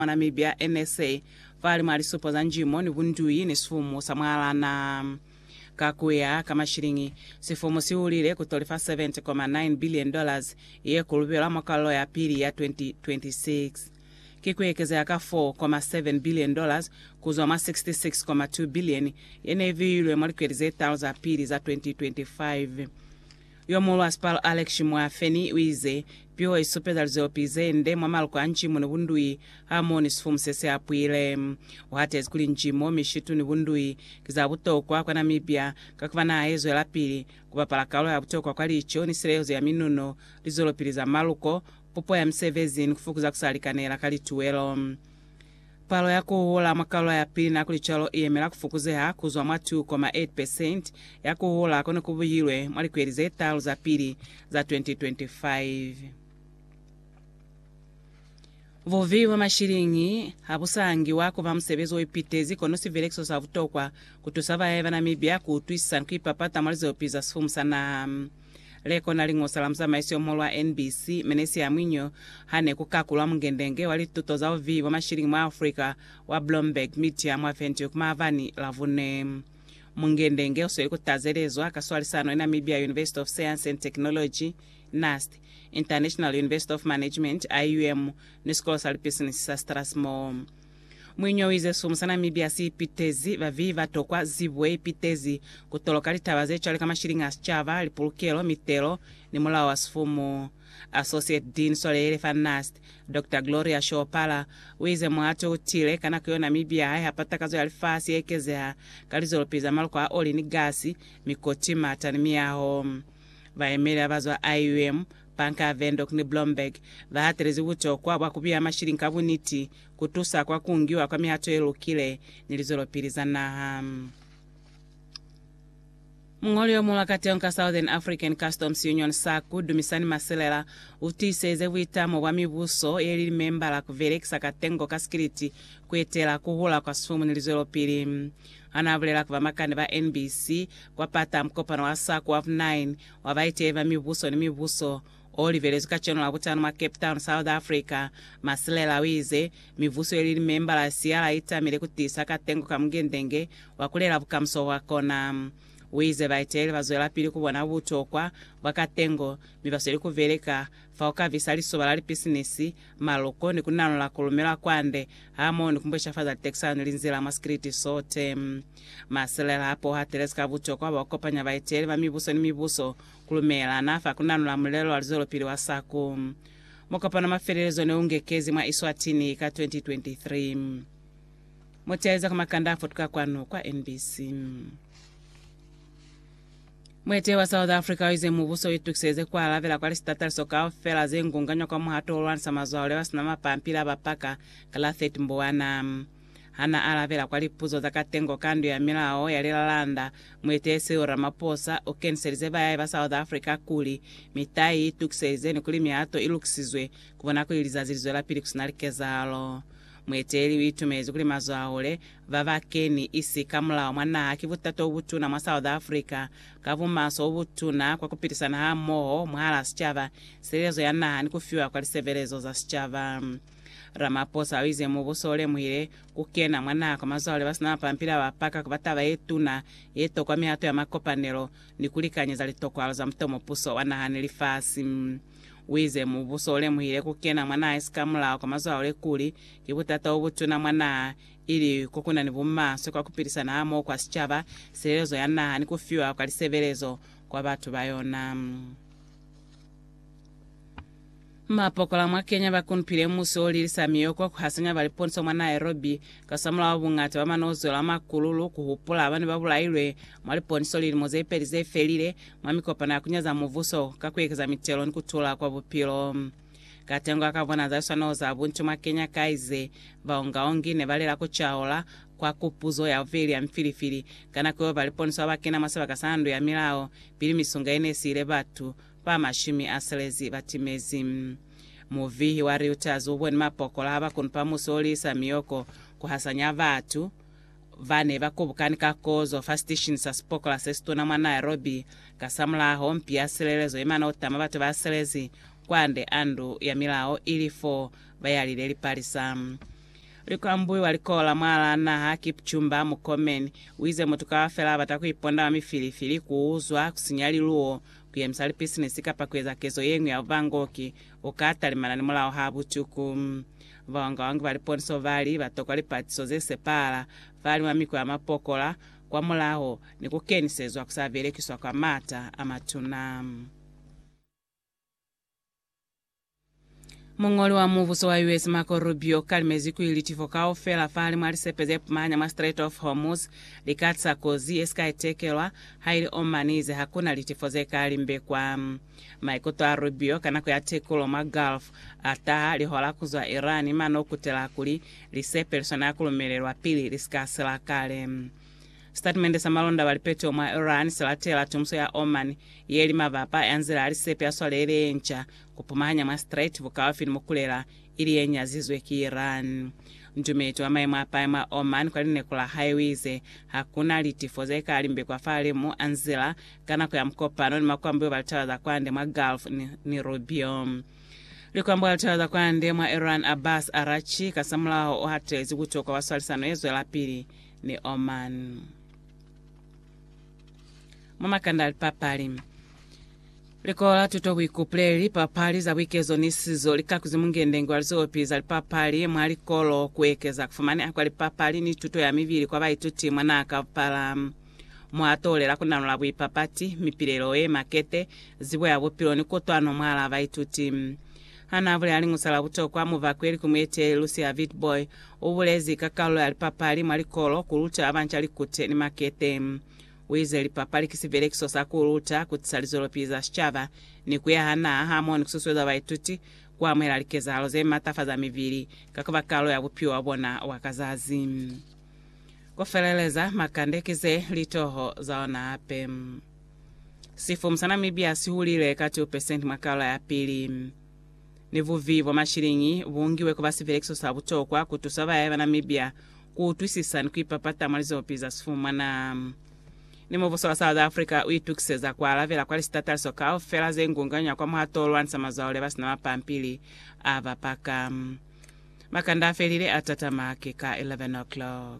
mwa Namibia, NSA, fa limu a lisupo za njimo ni bunduyi ni sifumu sa mwalana. Ka ku ya ka mashiliñi, sifumu si hulile ku toli fa US7.9 billion dollars ye ku lubelwa mwa kwalelo ya pili ya 2026. Ki ku ekezeha ka US4.7 billion dollars ku zwa mwa US66.2 billion ye ne i viilwe mwa likweli ze talu za pili za 2025. Yo muulwa Spar Alex Mwafeni uize, Piho isupeza lizopi zende mwa maluko a ncimo ni bundui hamoho ni sifumu sesiapwile. Uhatezi kuli ncimo, mishitu ni bundui ki za butokwa kwa Namibia kakuba naha yezwelapili kubapala kalulo ya butokwa kwa lico ni sileyezo ya minuno, lizwelopili za maluko, pupo ya misebezi ni kufukuza kusalikanela ka lituwelo. Palo ya ku hula mwa kaula ya pili na kuli cwalo i yemela ku fukuzeha ku zwa mwa 2.8 percent ya ku hula ko ne ku buhilwe mwa likweli ze talu za pili za 2025. Bubi bwa mashiliñi ha bu sa ngiwa ku ba musebezi o ipitezi kono sivelekiso sa butokwa ku tusa bae ba Namibia ku utwisisa ni ku ipapata mwa lizopi za sifumu sa naha. Leko na li ñosa la muzamaiso yo muhulu wa NBC, Menesi Amwinyo, ha ne ku kakulwa mungendenge wa lituto za buviyi bwa mashilingi mwa Afrika wa Bloomberg Media mwa Windhoek maabani Lavune. Mungendenge u sweli ku tazelezwa ka swalisano ni Namibia University of Science and Technology, NUST, International University of Management, IUM, ni sikolo sa lipisinisi sa Strathmore. Muiñwa uize silumu sa Namibia si ipitezi baviyi ba tokwa zibo ipitezi ku toloka litaba ze cwale ka mashiliñi a sicaba, lipulukelo, mitelo, ni mulao wa sifumu. Associate Dean Swaleyele fa NNAST, Doctor Gloria Shoopala, uize muhato u tile ka nako yo Namibia ha iha patakazo ya lifasi ye ekezeha ka lizwelopili za maluko a oli ni gasi, mikoti, mata ni miyaho. Bayemeli ba bazwa IUM, Pankar Windhoek ni Blomberg, ba hatelezi butokwa bwa kubiha mashiliñi ka buniti, ku tusa kwa ku ngiwa kwa mihato ye lukile ni lizwelopili za naha. Muñoli yo mulwa ka teong ka Southern African Customs Union, SACU, Dumisani Masilela, u tiiseze buitamo bwa mibuso ye li limembala ku belekisa katengo ka sikiliti ku etela ku hula kwa sifumu ni lizwelopili. Ha n'a bulela ku bamakani ba NBC kwa pata mukopano wa SACU wa vu 9 wa baiteli ba mibuso ni mibuso, o livelezwi kacenu Labutanu mwa Cape Town, South Africa, Masilela o ize, Mivuso ye li limembala ya siala i tamile ku tiisa katengo ka mungende-nge wa ku lela bukamuso bwa kona. U ize baeteleli ba zwelapili ku bona butokwa bwa katengo mi ba sweli ku beleka fa ku kabisa lisoba la lipisinisi, maloko, ni ku nanola ku lumelwa kwande hamoho ni ku mbweshafaza litekisano ni linzila mwa sikiliti sote. Masilela hape o hatelezi ka butokwa bwa ku kopanya baeteleli ba mibuso ni mibuso Kulumela, na fa kunanula mulelo wa luzwelopili wa SACU. Mukopano wa mafelelezo ne u ngekezi mwa Eswatini ka 2023. Mu teeleza kwa makanda a futuka kwanu kwa NBC. Muetehi wa South Africa o ize mubuso u itukiseleze ku alabela kwa lisitataliso kaufela ze ngunganywa kwa muhato wo lwanisa mazwaule ba si na mapampili a ba paka ka la 30 Mbwana. Ha n'a alabela kwa lipuzo za katengo ka Ndu ya Milao ya Lilalanda, mueteleli Cyril Ramaphosa u keniselize bayahi ba South Africa kuli, mitai i tukiselize ni kuli mihato i lukisizwe ku bona kuli lizazi li zwelapili ku si na likezahalo. Mueteleli u itumelezi kuli mazwahule ba ba keni isi ka mulao mwa naha ki butata o butuna mwa South Africa, ka bumaso o butuna kwa ku pilisana hamoho mwahal'a sicaba, silelezo ya naha ni ku fiwa kwa lisebelezo za sicaba. Ramaphosa uize mubuso ulemuhile kukena mwa naha kwa mazwale basina mapampili abapaka kuba taba yetuna yeto kwa mihato ya makopanelo ni kulikanyeza litokwalo za mutomupuso wa naha ni lifasi. Uize mubuso ulemuhile kukena mwa naha isika mulao kwa mazwale kuli ki butata obutuna mwa naha ili kokunani bumaswe kwa kupilisana hamoho kwa sichaba, silelezo ya naha ni kufiwa kwa lisebelezo kwa batu bayona. Mapokola mwa Kenya ba kunpile musi o lilisa miyoko ku hasanya ba liponisa mwa Nairobi kasamulaho bungata ba manozwelo a makululu ku hupula ba ne ba bulailwe mwa liponiso lilimo ze peli ze felile mwa mikopano ya ku nyaza mubuso ka ku ekeza mitelo ni ku tula kwa bupilo. Katengo a ka bona za swanelo za buntu mwa Kenya ka ize, Baongaongi ne ba lela ku caola kwa kupuzo ya bubeli ya mifilifili ka nako yeo ba liponisa ba ba kena mwa sibaka sa ndu ya milao pili misunga ye ne siile batu ba mashumi a selezi ba timezi. Muvihi wa Reuters u boni mapokola a ba kunupa musi o liisa miyoko ku hasanya batu ba ne ba kubukani ka kozo fa siteshini sa sipokola se situna mwa Nairobi kasamulaho mpi ya silelezo ye mana utama batu ba selezi kwande a ndu ya milao ili fo ba yalile lipalisa. Likwambui wa likola mwala naha Kipchumba Murkomen uize mutu kaufela abata kuiponda mwa mifilifili kuuzwa kusinya liluwo Kuyemisa lipisinisi kapa kueza kezo yeñwi ya bubangoki, uka talimana ni mulao ha butuku. Bawangawangi ba liponiso bali batokwa lipatiso zesepahala, faliñwa miko ya mapokola kwa mulaho, ni kukenisezwa kusabelekiswa kwa maata amatuna. Muñoli wa mubuso wa US Marco Rubio u kalimezi kuli litifo kaufela fahali mwa lisepe ze pumanya mwa Strait of Hormuz li ka tisa kozi ye si ka itekelwa, haili Oman i ize hakuna litifo ze ka limbekwa. Maikuto a Rubio ka nako ya tekulo mwa Gulf a taha lihola ku zwa Iran mane u kutela kuli lisepe li swanela ku lumelelwa pili li si ka sila kale. Sitatimende sa malonda ba lipeto mwa Iran se latela tomuso ya Oman ye li mabapa ya nzila ya lisepe ya swalele ye nca ku pumahanya mwa Strait bukaufi ni mukulela, ili ye nyazizwe ki Iran. Ndumeto wa maimo a pae mwa Oman kwa lineko la hae u ize, Ha ku na litifo ze ka limbekwa fahalimu a nzila ka nako ya mukopano ni makwambiwa ba litaba za kwande mwa Gulf ni, ni Rubio. Likwambiwa la litaba za kwande mwa Iran Abbas Araghchi kasamulaho u hatelezi butokwa bwa swalisano ye zwelapili ni Oman. Mwa makanda a lipapali, Likolo la Tuto Buikupuleli, lipapali za buikezo ni sizo li kakuzi mungendenge wa lizopi za lipapali mwa likolo ku ekeza ku fumaneha kwa lipapali ni tuto ya mibili kwa baituti mwa naha kaupala. Mo a tolela ku nanula buipapati, mipilelo ye makete, zibo ya bupilo ni kutwano mwalaa baituti. Ha n'a bulela liñusa la butokwa, muvakweli ku mueteleli Lucia Vitbooi U bulezi ka kalulo ya lipapali mwa likolo ku luta ba banca likute ni makete. U ize lipapali ki sibelekiso sa ku luta, ku tisa lizwelopili za sicaba, ni ku yaha naha hamoho ni ku susueza baituti ku amuhela likezahalo ze matafaza mibili ka ku ba kalulo ya bupilo bwa bona bwa ka zazi. Ku feleleza, makande ki ze li toho za ona hape. Sifumu sa Namibia si hulile ka 2 pesenti mwa kalulo ya pili. ni bubi bwa mashiliñi bu ngiwe ku ba sipelekiso sa butokwa ku tusa bayaya ba Namibia ku utwisisa ni ku ipapata mwa lizopi za sifumana. Ni Mubuso wa South Africa u itukiseza ku alabela kwa lisitataliso kaufela ze ngunganywa kwa muhato o lwanisa mazwaole ba si na mapampili a ba paka. Makanda a felile a tatama ki ka 11:00.